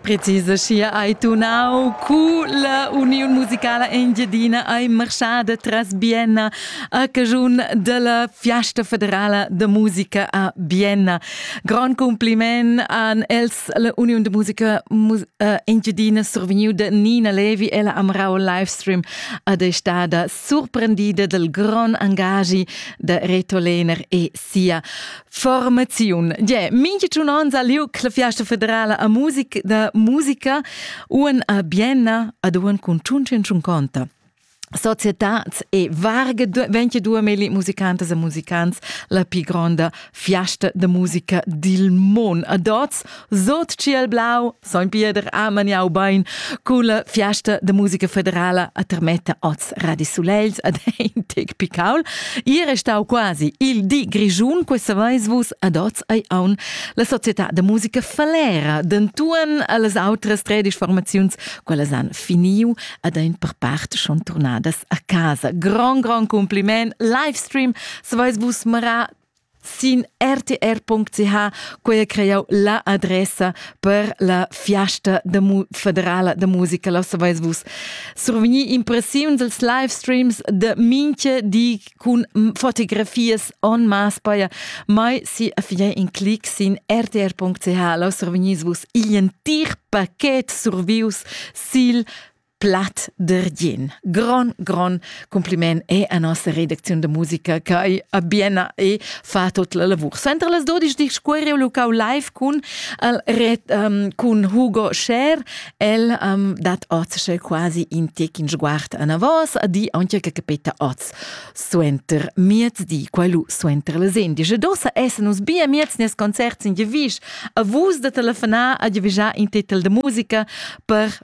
Preciseschia ei tunau culla Uniun musicala engiadina ei marschada tras Bienna a caschun della Fiasta federala de musica a Bienna. Grand compliment an els la Uniun de musica eh, engiadina survegniu de Nina Levi ella amrau livestream ad è stada surprendida del gran angagi de Reto Lehner e sia Formaziun. Yeah, minche giun ons ha lieu la fiasta federala a musica da musica uan a Bienna ad uan cun Ciuncin Ciunconta. Societats e varge 22 meli musicantas e musicants la più gronda fiasta de musica dil mon. A dots, sot ciel blau, Soin Pieder ha maniau bein culla fiasta de musica federala a termetta oz Radi Sulels ad ein tec picaul. Ier è stau quasi il di grigiun, questa veis vus ad oz ei aun la società de musica Falera dentuan alles outras tredisch formaziuns, quelles han finiu ad ein per part schon turnadas a casa. Grand grand compliment, Livestream, se veis vus mara Sin rtr.ch quei ha creau la adressa per la fiasta da mu federala da musica, lo saveis vus. Survegnir impressiuns als live streams de minche di cun fotografias en mass paia, mai si affier in clic sin rtr.ch, lo survegnis vus igl entir paquet survius sil Platt dergin. Gron, gron compliment è a nossa redacziun da musica che a Biena e fa tot la lavur. Sempre las 12 di squere lucau live cun, el, ret, um, cun Hugo Scher, el um, dat oz quasi in tec in sguard a vos, a di anche che capita oz suenter miezdi, quello suenter le sendice. Dosa essen uns bia mieznes concerts in gevisch, a vus da telefonar a gevijar in titel de musica per